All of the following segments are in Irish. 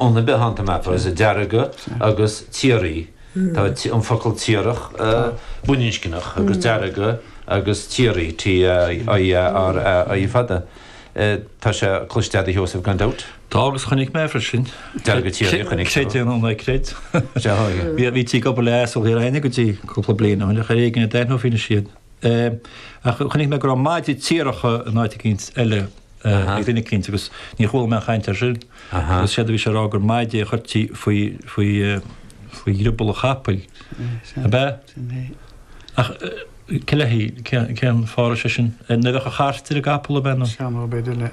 Ón a bith anta map, is deargadh agus tiaraí. Tá an focal tiarach baininscneach agus deargadh agus tiaraí, T-i-a-r-a-i fada. Tá sé cloiste agat, a Sheosaimh, gan dabht. Tá agus chonaic mé freisin. Deargadh tiaraí a chonaic tú. Creid é nó ná creid. Bhítí ag obair le asail thiar féin go dtí cúpla bliain ó shin ach ar éigean a d'aithneofaí anois iad. é, ach chonaic mé go raibh maide tiaracha in áit eicínt eile ag duine eicínt agus níor chuala mé aon chaint ar sin. Agus séard a bhí sé a rá gur maide a chuirtí faoi dhrioball an chapaill. Ab ea? Ach cé le haghaidh, cén fáth a raibh sé sin? Nuair a bheadh an chairt ar an gcapall ab ea nó? Seanfhadhb ar bith le.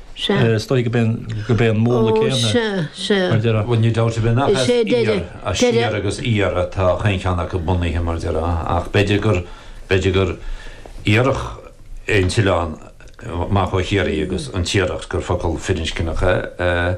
Sea. Is dóigh go b'é go b'é an múnla céanna. Ó, sea, sea. mar deireadh. Bhuel, níl dabht ar bith nach Is as é deireadh, iar, as deireadh. siar agus iar atá chaon cheann acu bunaithe, mar deireadh, ach b'fhéidir gur, b'fhéidir gur iarrach é an t-oileán amach ó Chiarraí agus an Tiaracht, gur focal firinscneach é.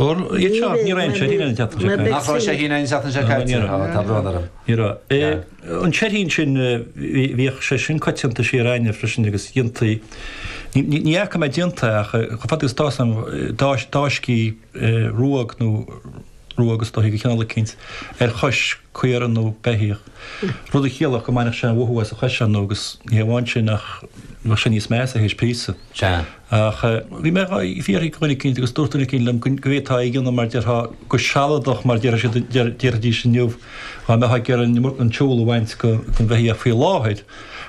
Nach raibh sé féin ann an tseachtain seo caite? Tá brón orm. Ní raibh. An seirín sin, bhíodh sé sin coitianta thiar againn freisin agus dhéantaí, ní fhaca mé déanta ach chomh fada agus atá a fhios agam, d'fháiscí ruóg nó ruóg is dóichí de chineál eicínt ar chois caora nó beithíoch, rud a chiallódh go mbainfeadh sé an mothú as a chois ann nó agus ní hamháin sin ach bheadh sé níos measa théis píosa. Ach bhí mé ag fiafraí de dhuine eicínt agus dúirt duine eicínt liom go bhféadfá é a dhéanamh mar déarfá go sealadach mar déarfaidh siad, déarfaidís inniu dhá mbeifeá ag iarraidh an siúl a bhaint den bheithíoch faoi láthair.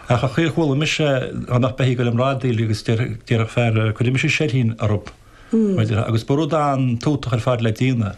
Ach an chaoi ar chuala mise dhá mbeadh beithígh ag bradaíl agus déarfadh fear, cuirfidh mise seirín orthu mar déarfá. Agus ba rud an-tútach ar fad le déanamh.